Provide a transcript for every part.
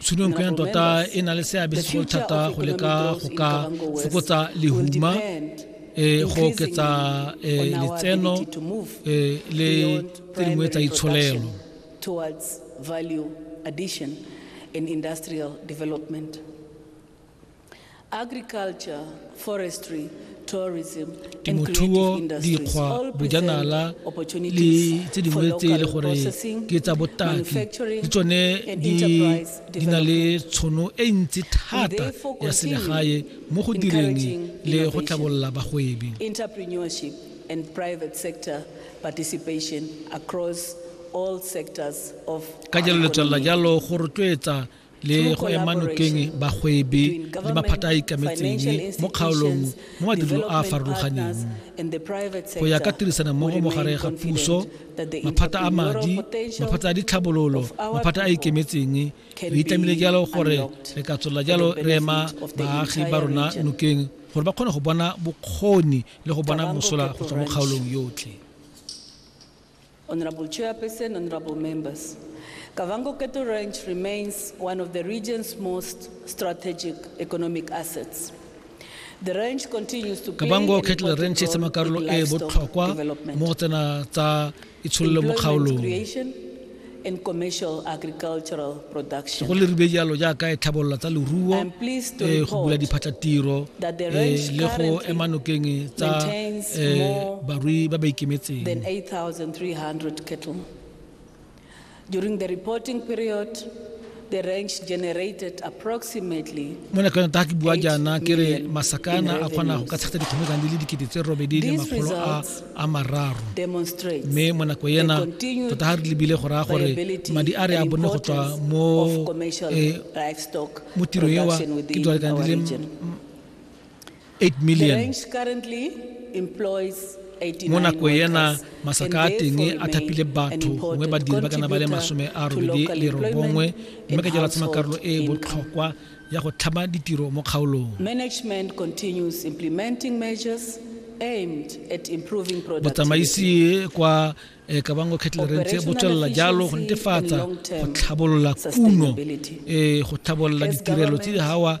Tshunong ya tota e na le seabe segolo thata go leka go ka fokotsa lehuma e go oketsa e, letseno e, le tse dingwe tsa itsholelo towards value addition in industrial development. temothuo dikgwa bojanala le tse dingwe tse e le gore ke tsa botaki le tsone di na le tshono e ntsi thata ya selegae mo go direng le go tlhabolola bagwebi and private sector participation across all sectors of ka jalo letswelela jalo go rotloetsa le go ema nokeng bagwebi le maphata a ikemetseng mo kgaolong mo madirelo a a farologaneng go ya ka tirisanommogo mogare ga puso maphata a madi maphata a ditlhabololo maphata a ikemetseng re itlamile jalo gore re ka tswelela jalo re ema baagi ba rona nokeng gore ba kgone go bona bokgoni le go bona mosola go tswa mo kgaolong yotlhe Honorable Chairperson, honorable members, Kavango Cattle Ranch remains one of the region's most strategic economic assets. The ranch continues to play Kavango Cattle Ranch e tsama karolo e botlhokwa mo go tsena tsa itshololo mo kgaolong. and commercial agricultural production. go lerube jalo jaaka e tlhabololo tsa leruo I'm pleased to eh, go bula report diphatlatiro that the eh, ranch le go currently ema nokeng tsa maintains eh, more barui ba ba ikemetseng than 8,300 cattle. During the reporting period, mo nakong ta ke bua jaana ke re masakana a kgona go ka tshegetsa dikgomekang di le dikete tse robedi le makgolo a mararo mme mo nako ena tota ga re lebile go raya gore madi a re a bonne go tswa mo eh, tirong ewa ke dwalekana di le 8 million mo nako ena masaka a teng a thapile batho gongwe badiri ba kana ba le masome a robedi le robongwe mme ka jalo tsema karolo e e botlhokwa ya go tlhama ditiro mo kgaolong botsamaisi kwa eh, kabango kettlerentse bo tswelela jalo go netefatsa go tlhabolola kuno eh, go tlhabolola ditirelo tse di gawa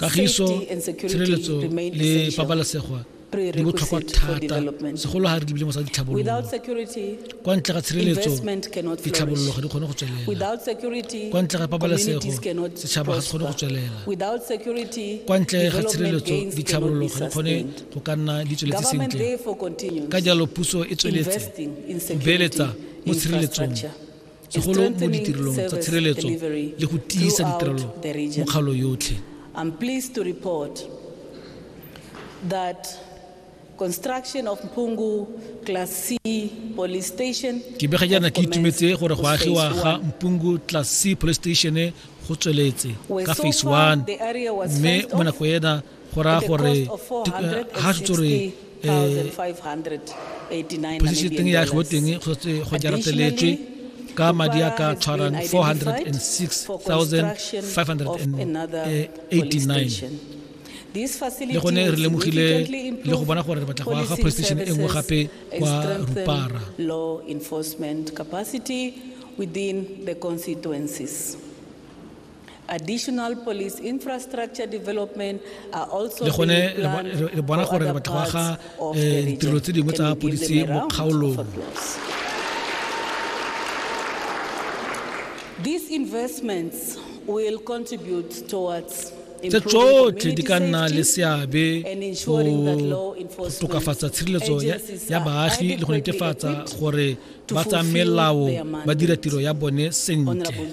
kagiso tshireletso le pabalesego di botlhokwa thata segolo ga re lebile mo sa ditlhabololo kwa ntle ga tshireletso ditlhabololo ga di kgone go tswelela kwa ntle ga pabalesego setšhaba ga se kgone go tswelela kwa ntle ga tshireletso ditlhabololo ga di kgone go ka nna di tsweletse sentle ka jalo puso e tsweletse go beeletsa mo tshireletsong segolo mo ditirelong tsa tshireletso le go tiisa ditirelo mo kgaolo yotlhe I'm pleased to report that construction of Mpungu Class C police station ke bega jaana ke itumetse gore go agiwa ga Mpungu Class C police station go tsweletse ka phase 1 mme mo nako ena go raya gore ga se tsore posiseteng ya go teng go jarateletswe ka madi a ka tshwarang 406,589 le gone re lemogile le go bona gore re batla go aga police station e nngwe gape kwa rupara within the constituencies. le gone re bona gore re batla go aga eh, ditirelo tse dingwe tsa polisi mo kgaolong These investments will contribute towards tse tsotlhe di ka nna le seabe go tokafatsa tshireletso ya baagi le go netefatsa gore ba tsa melao ba dira tiro ya bone sentle